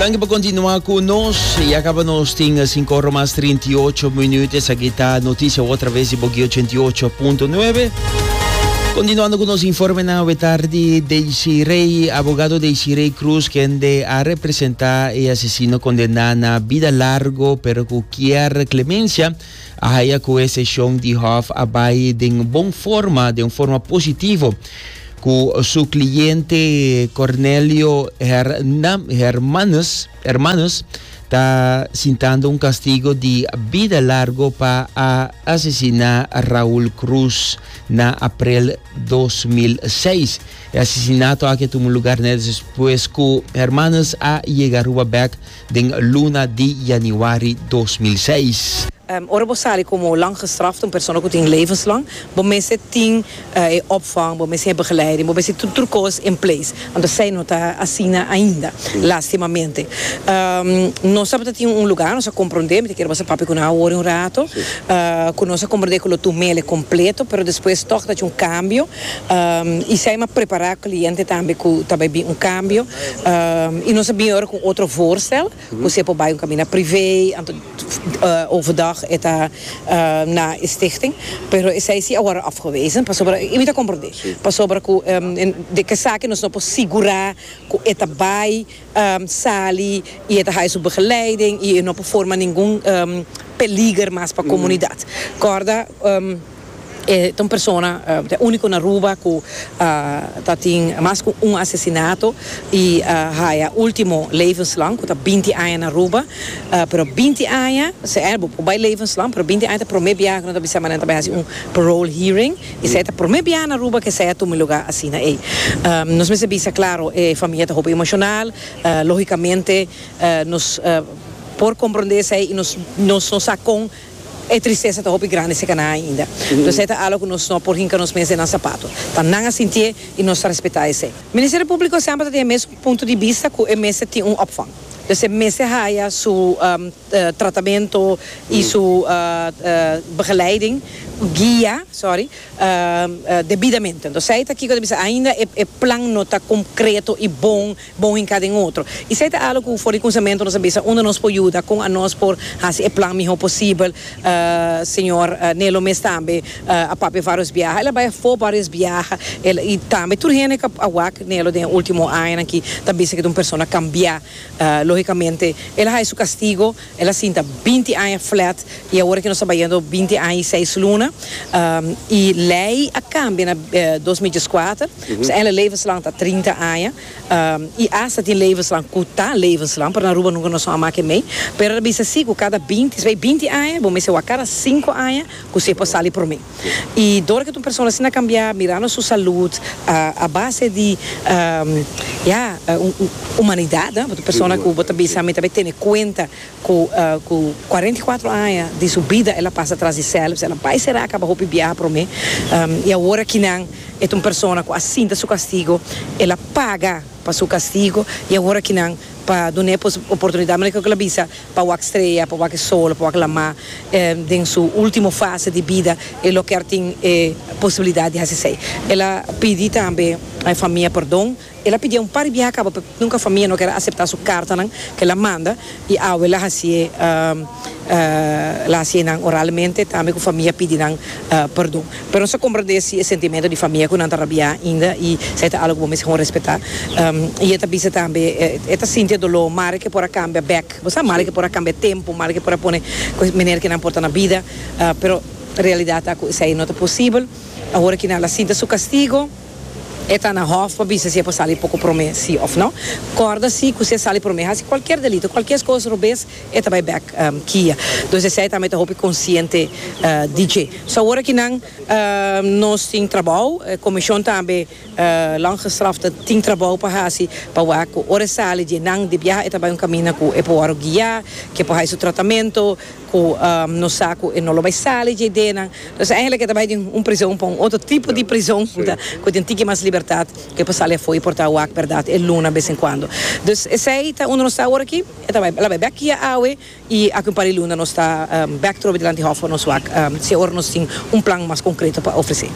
Danki pa kontinua ku nos. Ya kaba nos tin sinku ora mas 38 minut. Esaki ta notisia otra ves di Boki 88.9. Kontinuando ku nos informenan awe tardi, Daisy Rey, abogado Daisy Rey Cruz, kende a representá e asesino kondená na bida largu pero ku kier klemensia, a haya cu e sesion di hof a bay den bon forma, den un forma positivo, cu su cliente Cornelio Hernam, Hermanus, Hermanus ta sintando un castigo di bida largo pa a asesina Raul Cruz na aprel 2006. E asesinato aki a tuma lugar net despues cu Hermanus a yega Aruba bek den luna di yanüari dos mil seis. Ora bo sali komo lang gestraft, un persona ku tin levenslang, bo mester tin e opvang, bo mester tin e begeleiding, bo mester tin tur kos in place. Anto esei no ta asina ainda, lastimamente. Nos tabata tin un lugá, nos a komprondé, mi ta kere basa papia ku nan awor un rato, ku nos a komprondé ku lo tu mele kompleto, pero despues tòg ta hasi un kambio. I Saima prepará kliente tambe ku ta bai bin un kambio i nos a bin ora ku un otro voorstel ku si e por bai un kaminda privé anto overdag e ta na e stichting pero esei si a wòrdu afgewezen pasobra i mi ta komprendé pasobra ku di esaki nos no por sigurá ku e ta bai. sali y e ta haya su begeleiding y e no por forma ningun peliger mas pa comunidad. Corda e ta un persona ta e unico na Aruba cu ta tin mas cu un asesinato y a haya ultimo levenslang cu ta binti aña na Aruba pero binti aña, bo por bay levenslang pero binti aña ta prome bia cu no ta bisa manan ta bay haci un parole hearing. Esei ta prome biaha na Aruba cu esei a tuma e lugar asina ey. Nos mester bisa claro, e familia ta hopi emocional, logicamente nos por comprende esei y nos nos no sa con e tristeza ta hopi grandi si cana ainda. Enton esei ta algo cu nos no por hinca nos mes den nan zapato. Ta nan a sintié y nos ta respeta esei. Ministerio Publico semper ta tin e mes un punto di bista cu e mester tin un opvang. Esei mester haya su. tratamento y su begeleiding, guia, sorry, debidamente. Entonces esey ta kiko ta bisa ainda e plan no ta concreto y bon, bon hinca den otro. Y esey ta algo cu for di cunsamento nos a bisa unda nos por yuda, con anos por haci e plan miho posibel. Señor Nelo mes tambe a papia varios biaha, el a bay afo varios biaha, el, y tambe tur hende cu a wak Nelo den e ultimo añanan aki ta bisa cu ta un persona cambia. Lógicamente, el a hay su castigo, el a sinta binti aña flat, y awor que nos ta bayendo binti aña y seis luna, y ley a cambia na dos mil diescuater, p'esei ain la levenslang ta trinta aña, y hasta tin levenslang cu ta levenslang, pero na Aruba nunca nos no a mak e mei, pero el a bisa si cu cada binti, esei binti aña, bo mester wak cada cinco aña cu se por sali prome. I dor ke tur persona asina kambiá mirando su salud a base di ya humanidat, bo ta persona ku bo ta bisa mi ta be tene kuenta ku ku kuarenta i kuatro aña di su bida el a pasa tras di sèlps, el a bai sera a kaba hopi biaha promé i awor aki nan e ta un persona ku a sinta su kastigo, el a paga pa su kastigo i awor aki nan pa dun'é pues oportunidat manera ku el a bisa. Pa wak strea, pa wak e sol, pa wak lamá den su último fase di bida, e lo ker tin e posibilidat di hasi esei. El a pidi tambe e famia perdon. El a pidia un par di biaha kaba pe nunka famia no ker aseptá su kartanan ku el a manda i awe el a hasi e el a hasi e nan oralmente tambe ku famia pidi nan perdon. Pero nos ta comprende si e sentimento di famia cu nan ta rabia ainda y sa e ta algo cu bo mester con respeta. Y e ta bisa tambe e ta sinti e dolor mari ke por a cambia bek. Bo sa mari ke por a cambia e tempo, mari ke por a pone cu maner ke nan por ta na bida, pero realidad ta cu esai no ta posibel. Ahora ki nan la sinti su castigo, e ta na hof pa bisa si e por sali poco prome si of no. Corda si cu si e sali prome hasi cualkier delito, cualkier cos robes. e ta bai bek kia. Dus esei tambe ta hopi konsiente di dje. So awor aki nan nos tin trabou, e komishon tambe lang gestrafte tin trabou pa hasi pa wak ku ora e sali dje nan di biaha e ta bai un kaminda ku e por wòrdu guia, ku e por hai su tratamentu, ku nos sa ku e no lo bai sali dje idea nan. Dus eigenlijk e ta bai den un prizon pa un otro tipo di prizon ku tin tiki mas libertat ku e por sali afó y por ta wak bèrdat e luna bes en kuando. Dus esei ta unda nos ta awor aki. E ta bai, la bai bek kia awe i aki un par di luna nos ta bek trobe dilanti hòf for nos wak si e ora nos tin un plan mas konkreto pa ofresé.